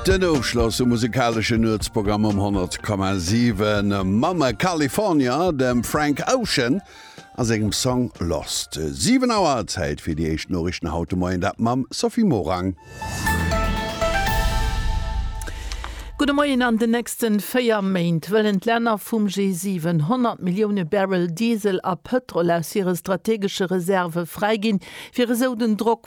Den Ofschloss um musekaleschen Nuetsprogramm um 100,7 mam California, dem Frank Ocean a sengem Song Lost. 7 Auer, Zäit fir déi éischt Noriichten haut de Moien, dat mam Sophie Morang. Gudde Moien, An den nächste 4 Méint wëllen d'Länner vum G7 100 Millioune Barrel Diesel a Pëtrol aus hire strategesche Reserve fräiginn, fir esou den Drock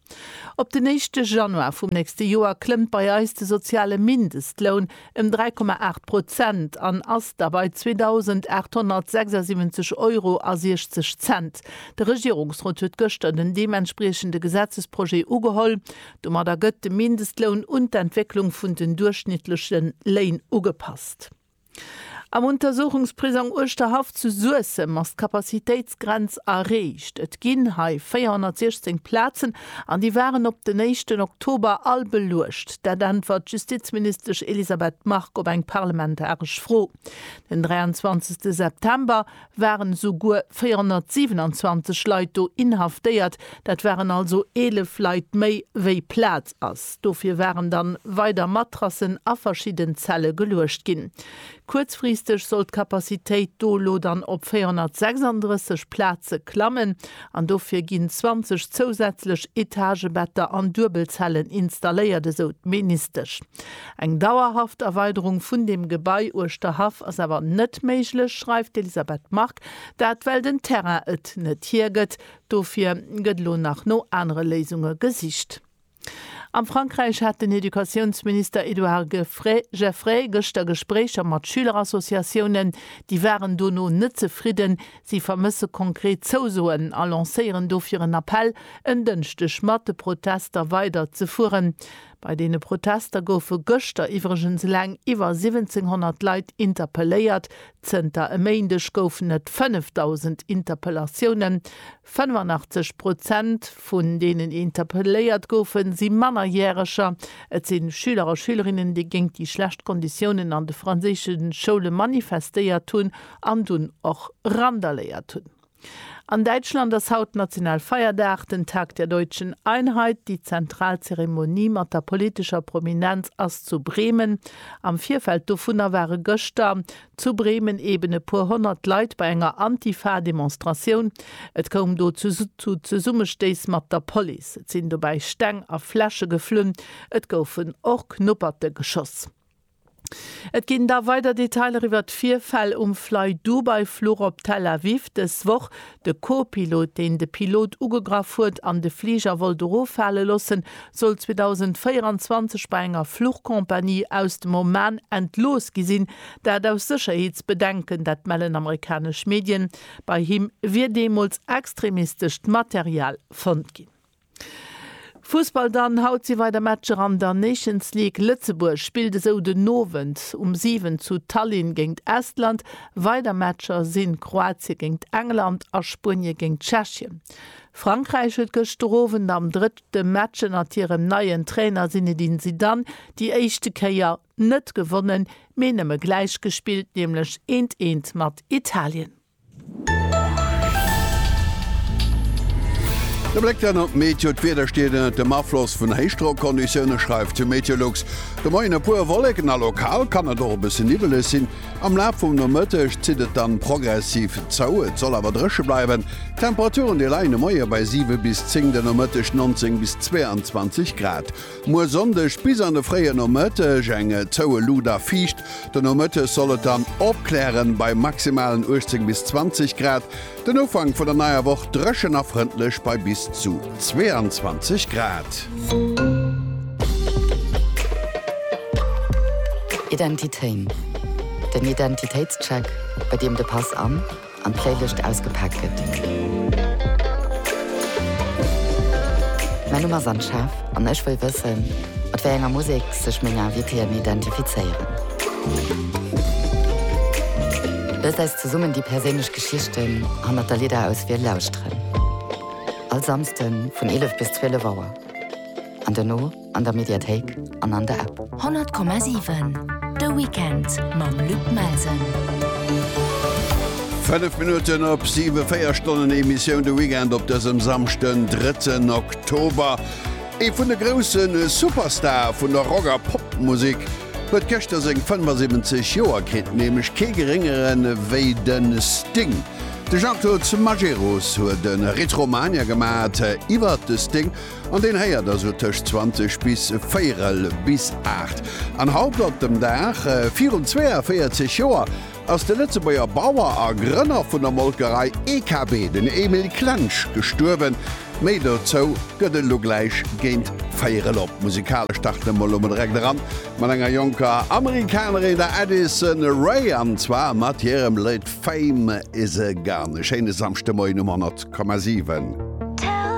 Op den éischte Januar vum nächste Joer klëmmt bei eis de soziale Mindestloun ëm 3,8 Prozent an ass da bei 2.876 Euro a 60 Cent. De Regierungsrot huet gëschter den deementspriechende Gesetzesprojet ugeholl. Domadder gëtt de Mindestloun un d'Entwécklung vun den duerchschnittleche Léin ugepasst. Am Untersuchungsprisong Uerschterhaff zu Suessem ass d'Kapazitéitsgrenz erreecht. Et ginn hei 416 Plazen an déi waren op den éischten Oktober all beluecht. Dat äntwert d'Justizministesch Elisabeth Margue op eng parlamentaresch Fro den 23 September. waren esouguer 427 Leit do inhaftéiert, dat waren also 11 Leit méi wéi Plaz ass. Dofir waren dann weider Matrassen a verschidden Zelle geluecht ginn. Kuerzfristeg soll d'Kapazitéit do elo dann op 436 Plaze klammen an dofir ginn 20 zousätzlech Etagebetter an Duebelzellen installéiert, esou d'Ministesch. Eng dauerhaft Erweiderung vun dem Gebai uechter Haff ass awer net méiglech, schreift d'Elisabeth Margue. Dat well den Terrain et net hiergëtt. Dofir gëtt elo nach no anere Léisunge gesicht. Am Frankräich hat den Educatiounsminister Edouard Geffray gëschter Gespréicher mat Schülerassociatiounen. Déi waren dono net zefridden. Si vermësse konkret Zousoen a lancéieren dofir en Appell, en Dënschdeg mat de Protester weiderzefueren. Bei deene Protester goufe gëschter iwwregens eleng iwwer 1700 Leit interpelléiert. Zënter e Méindeg goufen et 5.000 Interpellatiounen. 85 Prozent vun deenen, déi interpelléiert goufen, si Mannerjäreger. Et si Schüler a Schülerinnen, déi géint déi schlecht Konditiounen an de franséische Schoule manifestéiert hunn an dunn och randaléiert hunn. An Däitschland ass haut Nationalfeierdag, den Tag der deutschen Einheit. Déi zentral Zeremonie mat der politescher Prominenz ass zu Bremen. Am Virfeld dovunner ware gëschter zu Bremen eben e puer honnert Leit bei enger Antifa-Demonstratioun. Et koum do zu Zesummestéiss mat der Police. Et sinn dobäi Steng a Fläsche geflunn. Et goufen och Knupperte geschoss. Et ginn da weider Detailer iwwert d'Virfäll um Flydubai-Fluch op Tel Aviv dës Woch. De Co-Pilot, deen de Pilot ugegraff huet an de Fliger wollt eroffale loossen, soll 2024 bei enger Fluchcompagnie aus dem Oman entlooss gi sinn. Dat aus Sécherheetsbedenken, dat mellen amerikanesch Medien. Bei him wier deemools extremistescht Material fonnt ginn. Fussball dann, Haut si weider Matcher an der Nations League. Lëtzebuerg spillt esou den Owend um 7 zu Tallinn géint Estland. Weider Matcher sinn Kroatie géint England a Spuenie géint Tschechien. Frankräich huet gëschter Owend am drëtte Match ënnert hirem neien Trainer Zinedine Zidane déi éischte Kéier net gewonnen, mee nëmme gläich gespillt, nämlech eent eent mat Italien. E Bléck dann op d'Meteo, D'Wieder steet ënnert dem Afloss vun Héichdrockonditioune, schreift de Meteolux. De Moien e puer Wolleken a lokal kann et och e bësse niwweleg sinn. Am Laf vum Nomëtteg zitt et dann progressiv zou, et soll awer dréche bleiwen. D'Temperaturen déi leien de Moie bei 7 bis 10, de Nomëtteg 19 bis 22 Grad. Muer Sonndeg bis an de fréie Nomëtteg eng zoue Luut a fiicht. De Nomëttes soll et dann opklären, bei maximalen 18 bis 20 Grad. Den Ufank vun der neier Woch dréchen a frëndlech bei bis zu 22 Grad. Identitéin, den Identitéitscheck, bei deem de Pass an. an d'Fréilicht ausgepaakt gëtt. Mäin Numm ass Anne Schaaf an ech wëll wëssen, mat wéi enger Musek sech meng Invitéen identifizéieren. Loosst eis zesummen déi perséinlech Geschichten hannert der Lidderauswiel lauschteren. All Samsden vun 11 bis 12 Auer. An dono? an der Mediathéik an an der App. 100,7 De Weekend mam Luc Melsen. Fënnef Minutten op siwe, véier Stonnen Emissioun de Weekend op dësem Samschden, 3 Oktober. Ee vun de grousse Superstare vun der Rock a Popmusek huet gëschter seng 75 Joer kritt, nämlech kee geréngere wéi de Sting. De Jean-Claude Majerus huet e Retromania gemaach iwwert de Sting An deen héiert da sou tëscht 20 bis véirel bis aacht. An haut op dem Dag virun 42 Joer ass de Lëtzebuerger Bauer a Grënner vun der Molkerei EKB, den Emil Klensch, gestuerwen. Méi dozou gëtt et elo gläich géint véirel op Musikale starten emol elo mol direkt eran mat enger jonker Amerikanerin, der Addison Rae, an zwar mat hirem Léd Fame Is A Gun. E schéine Samschdemoien um 100,7.